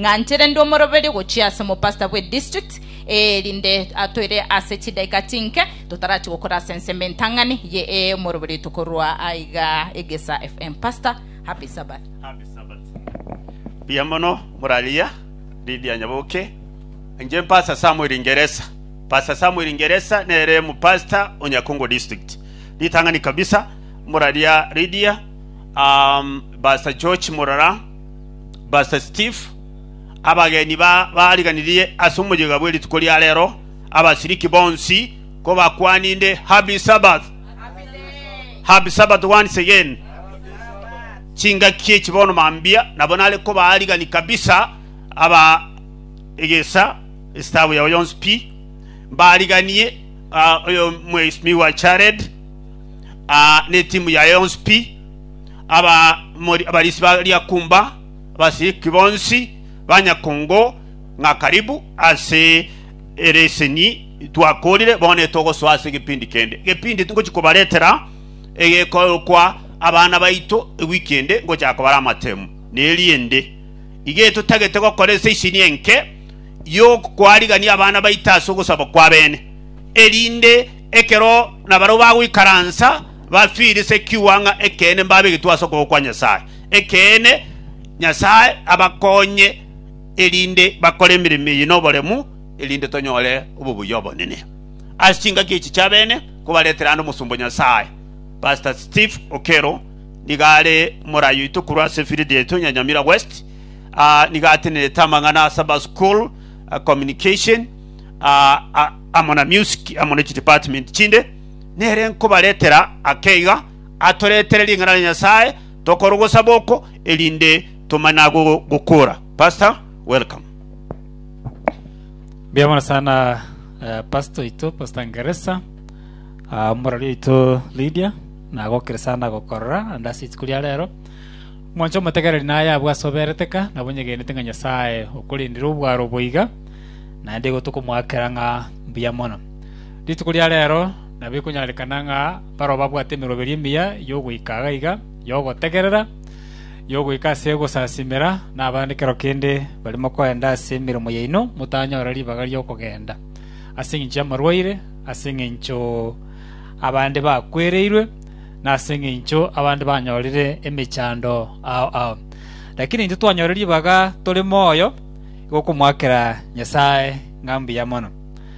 Ng'anchire ndi omoroberio gochia ase omopastor bwe district eye erinde atoire ase chidaika chinke totarachie gokora ase ensemo entang'ani ye ee omoroberio tokorua aiga Egesa FM pastor happy Sabbath. Happy Sabbath. Mbuya mono morariria Lydia Nyaboke. Inche Pastor Samuel Ingeresa. Pastor Samuel Ingeresa nere mu pastor o Nyakongo district. Ritang'ani kabisa moraria Lydia, um, Pastor George Murora, Verse 5, Abageni babaariganirie ase omoyega bwe rituko ria reero, abasiriki bonsi kobakwaninde, Happy Sabbath! Happy Sabbath once again. Chingaki echi bono mambia nabo nare kobaarigani kabisa aba egesa esitabu yao yonsi pi mbaariganie ah, oyo mweisimiwa Jared ah, ne timu yaye yonsi pi abamori, abarisi ba riakumba, abasiriki bonsi ba nyakongo, ng'a karibu ase ere eseni twakoorire, bono etogosoa ase egepindi kende gepindi tingochi kobaretera egekoorokwa abana baito ewiki ende ngochaka kobara amatemu, na erinde iga etotagete gokora ase eseni enke y'okwarigania abana baito ase ogosaba kw'abeene, erinde ekero nabarabwo bagoikaransa bafirise kiwa ng'a ekeene mbabegetwe ase okoboko kwa Nyasae. Ekeene, Nyasae abakonye erinde bakore emeremo eye noboremu, erinde tonyore obobuya obonene ase chingaki echi chi'abene kobaretera ande Omosomba o Nyasae, Pastor Steve Okello, nigo are morai oito korwa ase efield yaito ya Nyamira West. Ah, nigo atenerete amang'ana ase aba school, ah, communication, ah, ah, amo na music, amo ne chidepartment chinde. Nere nkobaretera ake iga, atoretere ring'ana ria Nyasae tokore ogosaba oko erinde tomanye na gokora. Pastor welcome. Mbuya mono sana eh, pastor oito pastor ngeresa ah, omorori oito lydia nagokire sana gokorora ande ase rituko ria rero mwancho omotegereri naye abwo ase oberete ka nabo nyegenete ng'a nyasae okorindire obwaro boiga naende igo tokomwakera ng'a mbuya mono Rituko ria reero nabo ekonyarekana ng'a barabwo babwate emeroberio emiya y'ogoika iga iga, y'ogotegerera, y'ogoika ase ogosasimera, na abande kero kende barimo kogenda ase emeremo yaino motanyora ribaga ri'okogenda, ase engencho y'amarwaire, ase engencho abande bakwereirwe, na ase engencho abande banyorire emechando ao ao. Lakini intwe twanyora ribaga tore moyo, igo komoakera Nyasae ng'a mbuya mono.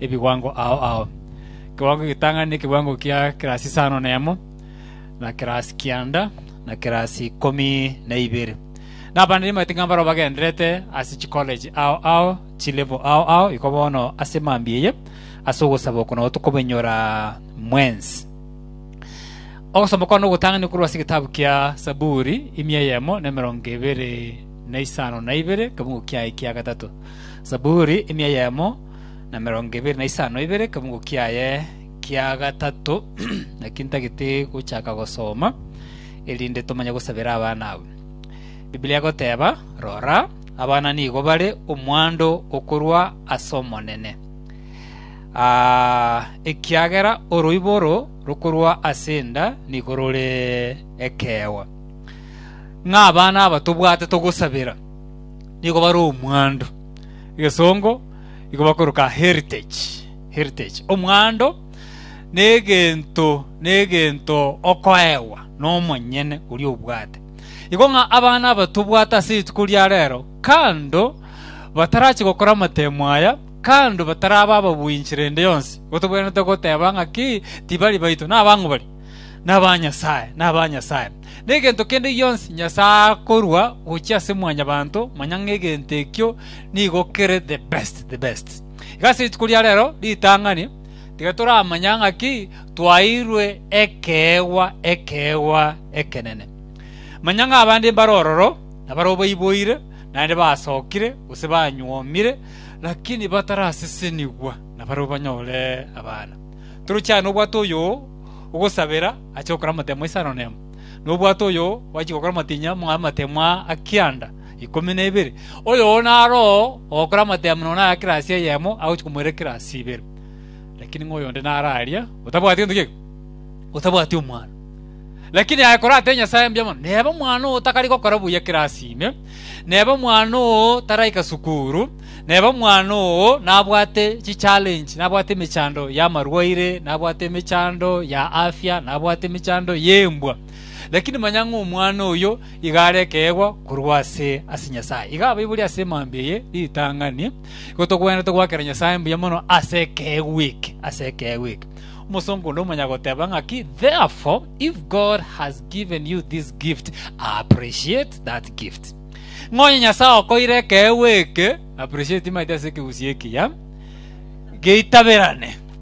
ebiwango ao ao. Ekewango egetang'ani nekewango kia kerasi isano na emo, na kerasi kianda, na kerasi ikomi na ibere. Na abana nimanyete ng'a mbarabwo bagendererete ase chikoleji ao ao, chilevo ao ao, iko bono ase mambia eye, ase ogosaba oko nao tokobenyora mwensi. Ogosoma kwane ogotang'ani korwa ase egetabu kia Saburi, imi eyemo na emerongo ebere na isano na ibere, ekebango kiaye kia gatato. Saburi, imi eyemo. na emerongo ebere na isano ibere ekemugo kiaye kia gatato, naki ntagete gochaka gosoma, erinde tomanye gosabera abana aba. Biblia egoteba, Rora, abana nigo bare omwando okorwa ase Omonene, aa, ekiagera oroiboro rokorwa ase enda nigo rore ekeegwa. Ng'a abana aba tobwate togosabera nigo bare omwando. egesongo igo bakoroka heritage, heritage, omwando negento negento okoegwa nomonyene oria obwate. Igo ng'a abana aba tobwate ase rituko ria rero, kando batarachi gokora amatemo aya, kando bataraba ababwinchi rende yonsi, gotobwenerete goteba ng'a ki tibari baito, nabang'u bare. naba nyasae, naba nyasae. Negento kende gionsi Nyasae akorua gochia ase mwanyabanto, manya ng'egento ekio nigo kere the best, the best. Iga ase rituko ria rero ritang'ani tiga toramanya ng'aki twaeirwe ekeegwa, ekeegwa ekenene. Manya ng'a abande mbare ororo, na barabwo baiboire, naende basokire, gose banyuomire, lakini batarasesenigwa, na barabwo banyore abana. Toroche aye nobwato oyoo ogosabera ache gokora amatemo isano nemo, na obwato oyoo gwachia gokora amatinya ama- amatemo aa a kianda ikomi na ibere. Oyoo naro oo ogokora amatemo nonya aya kirasi eyemo agochia komoira kirasi ibere. Lakini ng'a oyonde naro aria otabwati gento kiaigwa, otabwati omwando. Lakini aye korate Nyasae mbuya mono, neba omwana oo takari gokora buya kirasi ime, neba omwana oo taraika sukuru, Nere omwana oo nabwate chichalenji, nabwate emechando y'amarwaire, nabwate emechando ya afya, nabwate emechando y'embwa. Lakini manya ng'a omwana oyo iga are ekeegwa korwa ase ase Nyasae. Iga abaibori ase mambia eye ritang'ani, igo togwenerete goakera Nyasae mbuya mono ase ekeegwa eke, ase ekeegwa eke. Omosongo onde omonyagoteba ng'a ki, Therefore, if God has given you this gift, appreciate that gift. Ng'a onye Nyasae okoire ekeegwa eke, appreciate, maete ase ekegusii ekiya geitaberane.